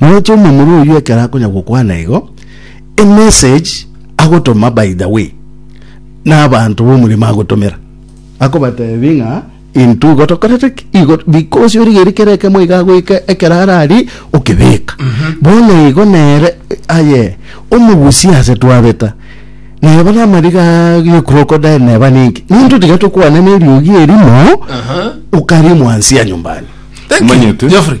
Naroche omomura oyio ekero akonya gokwana igo, emessage agotoma by the way nabanto b'omorimo agotomera, akobatebi ng'a intwe igo tokorete ki? Igo because origeiri kera ekemo iga agoika ekero arari okebeka. Bono igo nere aye omogusie ase twabeta neba namariga ye crocodile neba ninki? Nintwe tiga tokwana neriogi erimo okarimwa nsia nyumbani. Thank you, Omanyete? Geoffrey.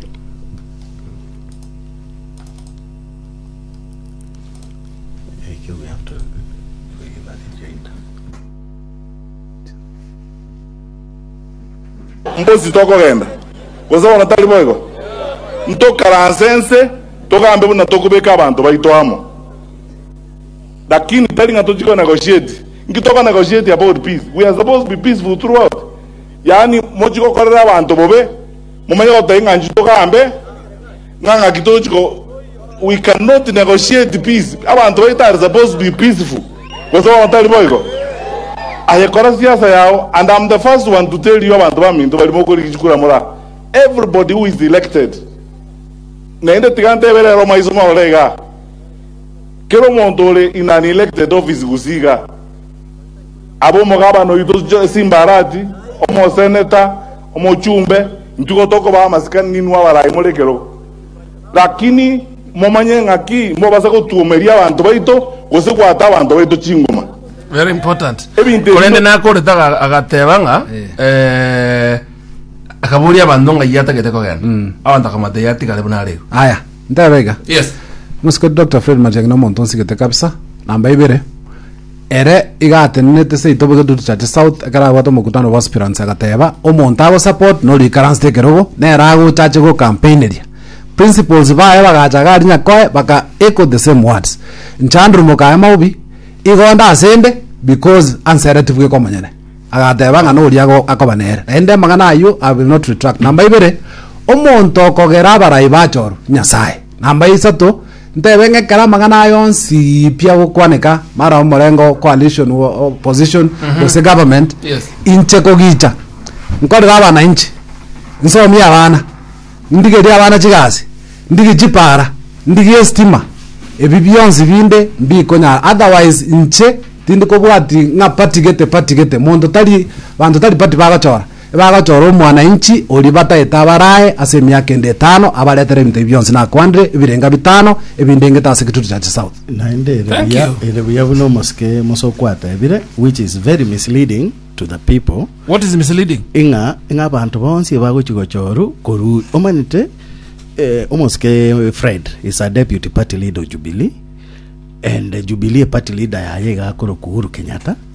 Mbosi tokogenda, gose bono tari boigo? Ntokaranse ense, togambe buna tokobeka abanto baito amo. Lakini tari ng'a tochia konegotiate. Inki tokonegotiatia about peace? We are supposed to be peaceful throughout. Yaani, mochie gokorera abanto bobe. Momanye gotogia ng'a inchuo togambe, ng'a ng'aki tochi ko we can not negotiate peace. Abanto baito are supposed to be peaceful. Gose bono tari boigo? Aye kora siasa yao and I'm the first one to tell you abanto baminto baria mokorigia chikura mora everybody who is elected. Naende tiga ntebe rero maiso morore iga. Kera omonto ore in an elected office gusii iga. Abe omogabana oito jo- simbarati, omoseneta, Omochumbe, inchuo gotokobaa amasikani ninwe abarai more ekerogo. Lakini momanye ng'aki mobasa gotuomeria abanto baito gose goata abanto baito chingoma. Very important. Ebinto ebi Korende no- nakorete aga- agateba ng'a eh, akaboria abanto ng'a iye atagete kogenda. Abanto akamata iye atigare buna are igo. Aya, ntebe iga. Yes. Mosike Dr. Fred Matiang'i nomonto nsigete kabisa, namba ibere. Ere igatenenete seito bobe getutu Church South ekero abwate omokutano bwa aspirants agateba omonto ago support nori ikaransete ekerogo nere agocha ache go campaigneria principals baye bagacha gari nyakoe baka echo the same words nchandru mokaye maobi igonda asende because ansere tibweka omonyene agateba ng'a nori ago akoba nere naende amang'ana ayio I will not retract namba ibere omonto okogera abarai bachoru nyasaye Namba ya isato, ntebe ng'a ekero amang'ana aya onsi pia gokwaneka, mara omorengo o coalition, wo- opposition, gose government, Yes. inche kogicha nkorere abanainchi, nsomie abana, ndigerie abana chigasi, ndigie chipara, ndigie estima, ebi bionsi binde mbikonyara, otherwise inche tindi kobwati ng'a party gete, party gete, monto tari, banto tari party bagochora. Bagochora omwananchi oria bataete abarae ase emiaka ende etano, abaretere ebinto ebio bionsi nakwandire, ebirenga bitano ebindengete ase Kitutu cha Chisouth. Naende ere Thank buya, you. ere buya buna omosike omoso kwatebire, which is very misleading to the people, What is misleading? ing'a ing'a abanto bonsi ebagochi gochoru koru omanete eh, omosike Fred is a deputy party leader of Jubilee and Jubilee party leader yaye iga akorokwa Uhuru Kenyatta